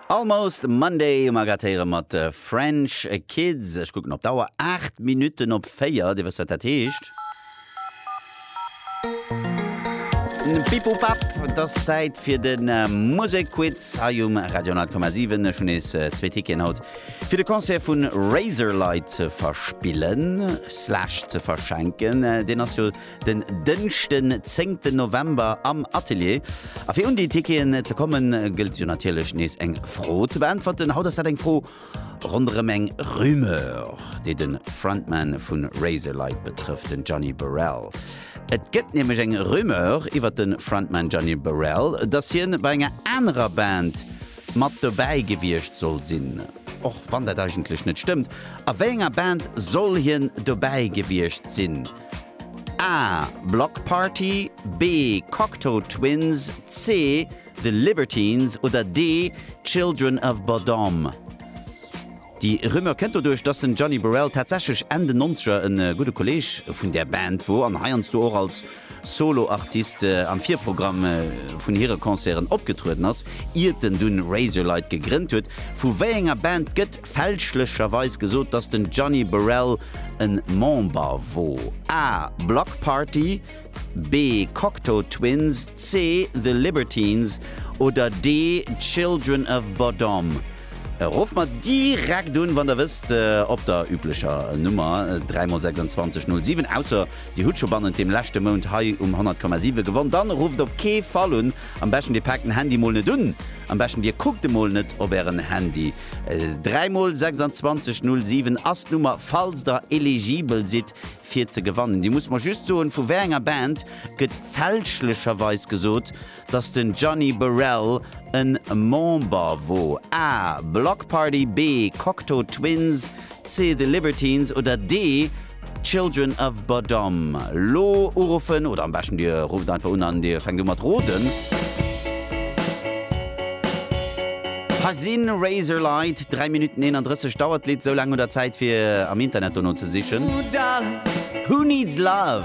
Almost Monday um Agratéiere mat French Kids. Ech kucken op d'Auer, 8 Minutten op 4. Dir wësst, wat dat heescht. Pipupap, et ass Zäit fir de Musekquiz hei um Radio 10,7. Ech hunn nees zwee Ticketen haut, fir de Concert vu Razorlight ze verspillen, slash ze verschenken. Deen ass jo den Dënschden 10 ten November am Atelier. A fir un déi Ticketen ze kommen, gëllt jo natierlech nees eng Fro ze beäntwerten. Haut ass dat eng Fro ronderëm eng Rumeur, déi de Frontman vu Razorlight betrëfft, den Johnny Borrell. Et gëtt nämlech eng Rumeur iwwer de Frontman Johnny Borrell, dass hien bei enger anerer Band mat dobäi gewiescht soll sinn, och wann dat eigentlech net stëmmt. A wéi enger Band soll hien dobäi gewiescht sinn? A, Block Party, B, Cocteau Twins, C, The Libertines oder D, Children of Bodom? Déi Rumeur kënnt doduerch, dass den Johnny Borrell tatsächlech Enn den Nonzeger e gudde Kolleeg vun där Band wor an heiansdo och als Solo-Artist am Virprogramm vun hire Concerten opgetrueden ass, iert en dunn Razorlight gegrënnt huet. Vu wéi enger Band gëtt fälschlecherweis gesot dass den Gianni Borrell en Member wor, A. Bloc Party, B. Cocteau Twins, C. The Libertines oder D. Children of Bodom? Rofft mer direkt un wann der wësst op der üblecher Nummer 3 mol 26 07, ausser dir hutt scho bannent dem leschte Mount hei um 100,7 gewonn, dann rufft op kee Fall un, am beschten dir paakt den Handy mol net un, am beschten dir kuckt emol net op ären Handy. 3 mol 26 07 ass d'Nummer falls der eligibel sidd fir ze gewannen. Dir musst mer just soen vu wéi enger Band gëtt fälschlecherweis gesot dass den Gianni Burrell en Member wor, A, Bloc Party, B, Cocteau Twins, C, The Libertines oder D, Children of Bodom lo uruffen oder am beschten dir rufft einfach un an dir fänkt u mat roden. Hei sinn Razorlight, 3 Minutten 31 dauert d'Lidd, esou laang hutt der Zäit fir am Internet dono ze sichen. Who needs love?